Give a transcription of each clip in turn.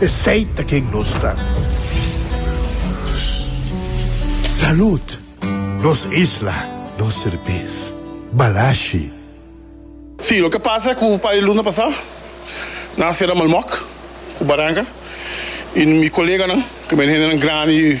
Esey ta ken nos ta. Salud! Nos isla, nos serbes. Balashi. Sí, loke pasa cu un par di luna pasá nan a cera Malmoc cu Baranca y mi coleganan cu mi hendenan grandi,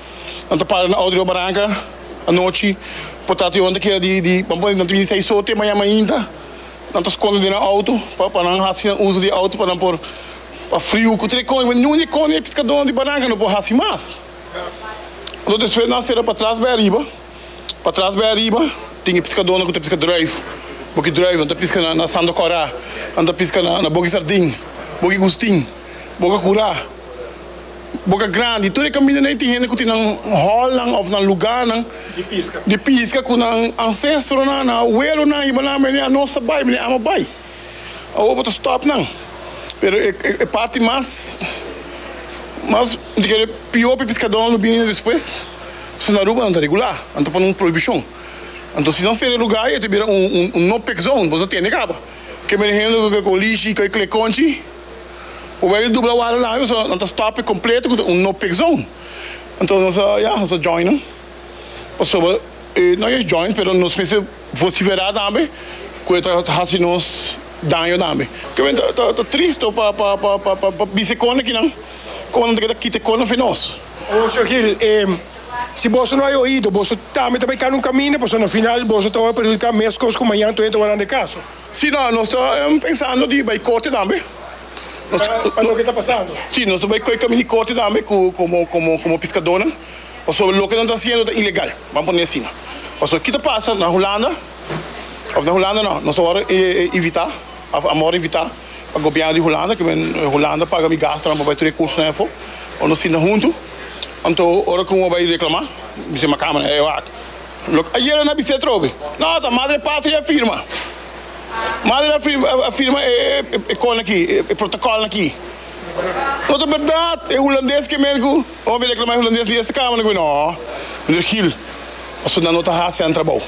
Nan ta para na Audrey Obaranca anochi por trata di hopi kera di di nan ta bini seis hopi maña mainta. Nan ta skonde den nan auto pa pa nan hasi nan uso di e auto pa nan por pa friu ku tre kònde pero nunde kònde e piskadónan di Baranca no por hasi mas. Anto despues nan a sera pa tras bai ariba. Pa tras bai ariba tin e piskadónan ku ta piska drùif, boki drùif. Nan ta piska na na Sando Kòrá, nan ta piska na na Boki Sardin, Boki Gustin, Boka Kurá. boka grandi tur e kaminda na e tin hende ku tin nan hòlnan òf nan lugánan di piska ku nan ansestronan nan awelonan i banan mene anos ta bai mene ama bai awo bo ta stòp nan pero e parti mas mas mi ta kere pió pa e piskadónan lo bini despues paske na Aruba nan ta regulá nan ta pone un prohibishon anto si nan sera e lugá ei ta bira un no pek zone bo no ta tende kaba. Ke mene hende lo ke kolishi kai kle konchi por bai di dubla wada nan riba so nan ta stop e kompleto ku ta un no pick zone entonces nos a ya nos a join nan pasoba e no yas join pero nos mester vociferá tambe ku e ta hasi nos daño tambe ke men ta ta tristo pa pa pa pa bisa e kona kinan komo nan ta keda kita e kona fen nos. Owo Shogil e. Si boso no hay oido, boso tambe ta bay cana un caminda, pasobra na final boso ta worde perjudica mescos cu mañana toyente ta worde anda e caso. Si, no, nos ta pensando di bay corte tambe. Pa loke ta pasando. Si, nos ta bay coge caminda di corte tambe cu como como como piscadornan, pasobra loke nos ta haciendo ta ilegal, bam pone asina. Pasobra ki ta pasa na Hulanda of na Hulanda no, nos ta worde evita. Amor invita pa gobierno di Hulanda cu men Hulanda paga mi gasto nan pa bay tur e cursonan efo pa nos sinta hunto. Anto ora cu bo bay reclama mi bisa macama nan e wak loke ayer a na bisa atrobe no ta Madre Patria a firma Madre a firma e cos nan aki e protocol nan aki no ta berdad e Hulandes ke men cu bo a bay reclama e Hulandes di esta camera nan cu no minder gil pasobra nan no ta hacinan trabao.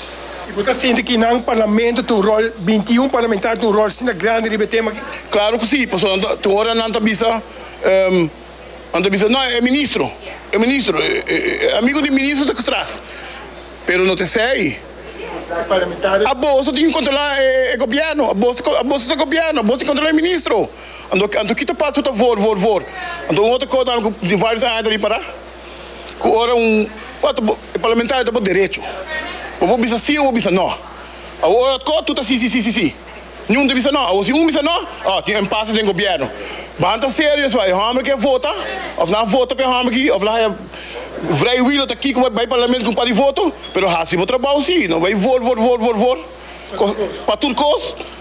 Y bo ta sinti ki nan parlamento tin un rol, binti y un parlamentario tin un rol asina grandi riba e tema aki? Claro cu si, pasobra nan ta, tin ora nan ta bisa, ehm, nan ta bisa, no, e ministro, e ministro, e amigo di ministro ta tras, pero no ta esey. E parlamentario. Aboso tin ki controla e gobierno, aboso, aboso ta gobierno, aboso tin controla e ministro, anto, anto ki ta pasa cu ta vor, vor, vor, anto un otro cos nan cu tin varios aña ta di para. ku ora un parlamentario ta bo derecho bo por bisa si o bo bisa no awo ora otko tur ta si si si si niun ta bisa no awo si un bisa no oh tin empase den gobierno ban ta serio so e homber ke vota of nan vota pe homber aki of laha e vrei wi lo ta aki ku bai parlamento ku un par di voto pero hasi bo trabou si no bai vor vor vor vor vor pa tur kos.